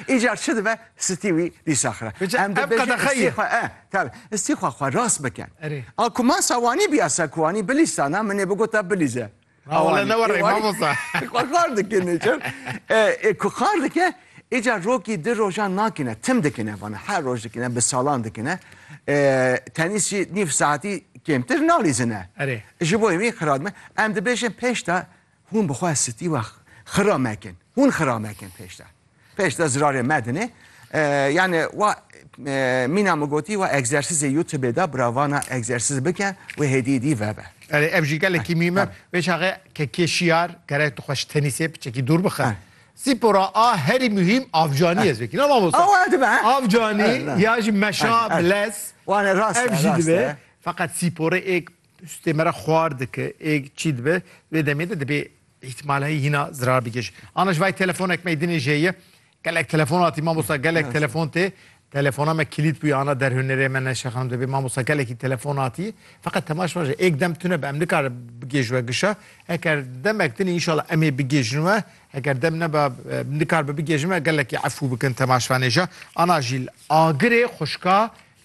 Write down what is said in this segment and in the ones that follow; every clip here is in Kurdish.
Îcar çi dibe stî wî dîsa xira. Em dibêjin stî xwe e tabi stî xwe xwe rast bike. A ku ma sawanî bîya se ku anî bilîstana min ê bigota bilîze. Wala ne were mamosta. Xwe xar dikine çi? E ku xar dike îcar rokî di rojan nakine tim dikine vana her roj dikine bi salan dikine. Tenîsî nîv saetî kêmtir nalîzine. Ji bo wî xiradme em dibêjin pêş de Hûn bi xwe stî we xira mekin. Hûn xira mekin pêş de. Pêş de zirarê me dinê. Yani wa mîna min gotî wa egzersîzê YouTubeê de bira vana egzersîz bike wê hêdî dî vebe. Erê ev jî gelekî mîm e. Vê çaxê ke kê şiyar gerek tu xwe ji tenîsê piçekî dûr bixin. Spora a herî muhîm avcanî ez vekî. Ne mamosta. Ew dibe. Avcanî ya jî meşa, bilez. Wan e rast e. Ev jî dibe. Feqet spora êk Tu stê me re xwar dike ê çî dibe vê demê de dibê îhtimal heye hîna zirar bike ji ana ji vay telefonek me dinê jê ye gelek telefon hatî mamosta gelek telefon tê telefona me kilît bûye ana derhûnerê me neşe xanim dibê mamosta gelekî telefon hatî feqet temaş me ji êk dem tune bi em nikare bigêj we gişa eger demek dinê înşallah em ê bigêjin we eger dem neba nikar bi bigêjin we gelekî efû bikin temaşvanê jî ana jîl agirê xuşka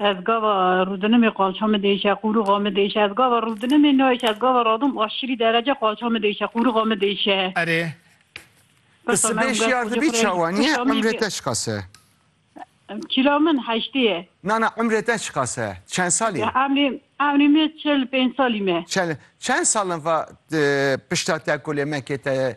Ez gava rûdinimê qalça min diêşe, qûrixa min diêşe. Ez gava rûdinimê nayêşe, ez gava radim aşirî derece qalça min diêşe, qûrixa min diêşe. Erê. Ti sibê şiyar dibî çawa nîye? Umrê te çiqas e? Kîla min heştê ye. Na na umrê te çiqas e? Çend sal î? Umrê umrê min çil pênc salî me. Çend çend salin va pişta te ku lê me kê te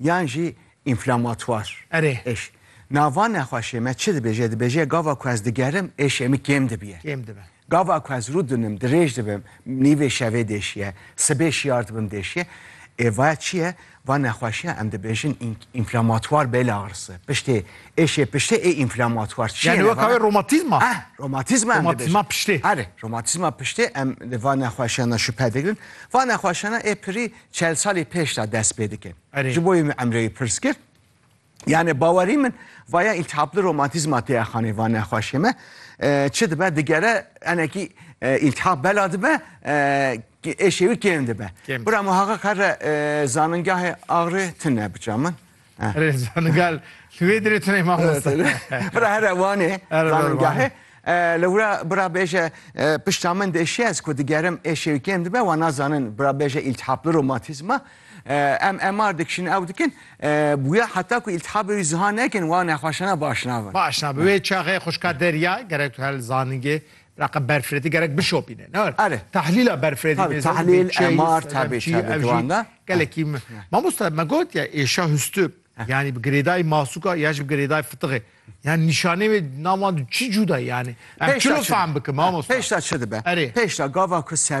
Yan jî înflamatuar Erê. êş. Nava nexweşê me çi dibêje? Dibêje gava ku ez digerim êşê min kêm dibiye. Kêm dibe. Gava ku ez rû dinim, dirêj dibim, nîvê şevê dêşiye, sibê şiyar dibim dêşiye. Ê vaya çi ye? Va nexweşiya em dibêjin înflamatuar bêlağrısı. Piştê êşê piştê ê înflamatuar çi ye? Yani weka wê romatizma? Heh, romatizma em dibêjin. Romatizma piştê. Erê, romatizma piştê em li va nexweşiyan de şüphe digirin. Va nexweşiyana ê pirî çel salî pêş de dest pê dike. Erê. Ji bo wê min Emre wî pirs kir. Yani bawerî min vaya îltihapli romantîzma tê exanê va nexweşê me. E, Çi dibe digere enekî e, îltihap bela dibe e, ki- êşê wî kêm dibe. Kêm. Bira min haqa kare e, zanîngahê Agri tune biça min. Rêzan gal li wê dirê tunê mamosta. Bira here wanê zanîngahê. Li wira bira bêje pişta min dê şiye ez ku digerim ê şêwikêm dibe wan nazanin bira bêje îltihapli romatîzma em MR dikişin ew dikin bûya heta ku îltihabê wî ziha nekin wan nexweşana baş nabin. Baş nabin wê çaxê xwişka derya gerek tu hel zanîngê Reqa berfirêdî gerek bişopîne. Ne Erê. Tehlîla berfirêdî Tabii, mêzan tahlil, bê çêyî, MR, tabii, tabii, çî, ev jî ciwan da. gelekî me. Mamosta me got ya êşa hustû yanî bi girêdayî masûka ya jî bi girêdayî fitiqê. Yani nîşanê wê di nav wan de çi cûda ye yani? Em Pêşta çilo çi- fehm bikim mamosta. Pêşta çi dibe? Erê. Pêşta gava ku ser